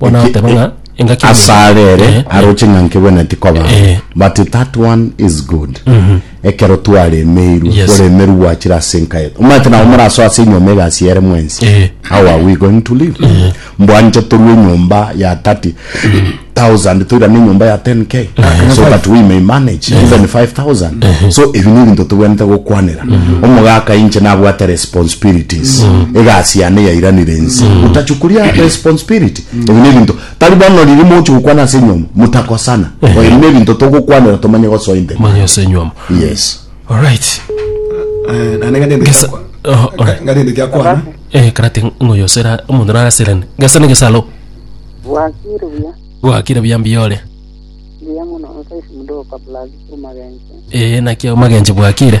Bono Eki- agoteba ng'a engaki ya ase omonto- arere Eh, aroche ng'a nkegwenereti koba Eh. but that one is good ekero twaremeirwe Yes. oremeru gwachire ase enka yetu omanyete nabo morasoa ase enyomba egasi ere mwensi Eh. how are we going to live mbwanche torue enyomba ya 30 thousand toirane enyomba ya 10k so that we may manage even 5000 so ebi ni ebinto tobwenete gokwanera omogaka inche nabwate responsibilities egasi yane yairanire ense gotachwa koria responsibility ebi ne ebinto tari bono riria mogochia gokwana ase enyiomo motakosana Ehe. ebi ne ebinto togokwanera tomanye gosoa inde manya ase enyiomo yes alright Eh, naende ng'a nende Gesa- giakwa- Oho, alright. ng'a nende giakwana eh karate ngoyo osera omonto narasirane gasa ne gesalo Wakiri buya, gwakire buya mbiyore buya muno, nkaisi mdogo kabla aziku magenzi. eh nakia magenje bwakire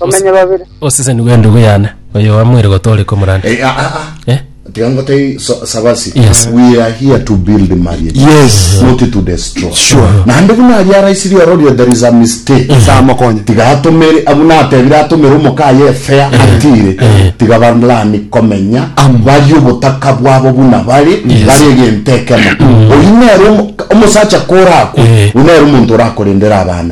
Bamenye babere. Oseseni bw'endugu yane, oyo oamoire gotooreka omorande. Eh, ah, ah, ah. Eh? Tiga ngotei so- sabasi Yes. we are here to build marriage Yes. not to destroy Sure. naende buna aria araisirie ororio there is a mistake Samokonye. tiga atomere abu natebire atomere omokaye efea atire tiga balani komenya bari obotaka bwabo buna bari bari egento ekemo oyu nere omo- omosacha korakwe Eh. oyu nere omonto orakorendera abana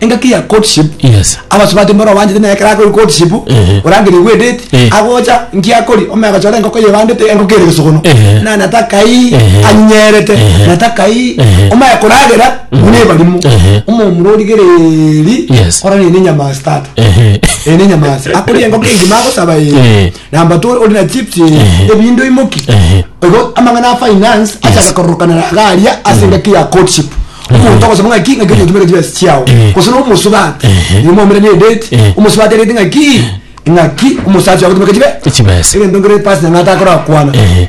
engaki ya courtship Yes. abasubati mboro obanchete naye ekero akori courtship Ehe. orangeriwe edate Ehe. agocha nkiakori omanya agachora engoko yebandete engoko ere gesogono Ehe. na natakai Ehe. anyerete Ehe. natakai Ehe. omanye koragera buna ebarimo Ehe. omomura origereri Yes. orarire nenyama ase tata Ehe. ere nenyama ase akoria engoko engima agosaba eye Eh. Namba two ori na chips Ehe. ebindo imoki Ehe. igo amang'ana a finance achaka kororokanera iga aria ase engaki ya courtship omonto ogosaba ng'aki ng'aki oyo otumere chibesa chiao Ehe. gose na omosubati Ehe. nigo mwaumerania edate Ehe. omosubati arete ng'aki ng'aki omosacha ogotumeka chibe Chibesa. egento nkere pastor ng'ata akorakwana Ehe.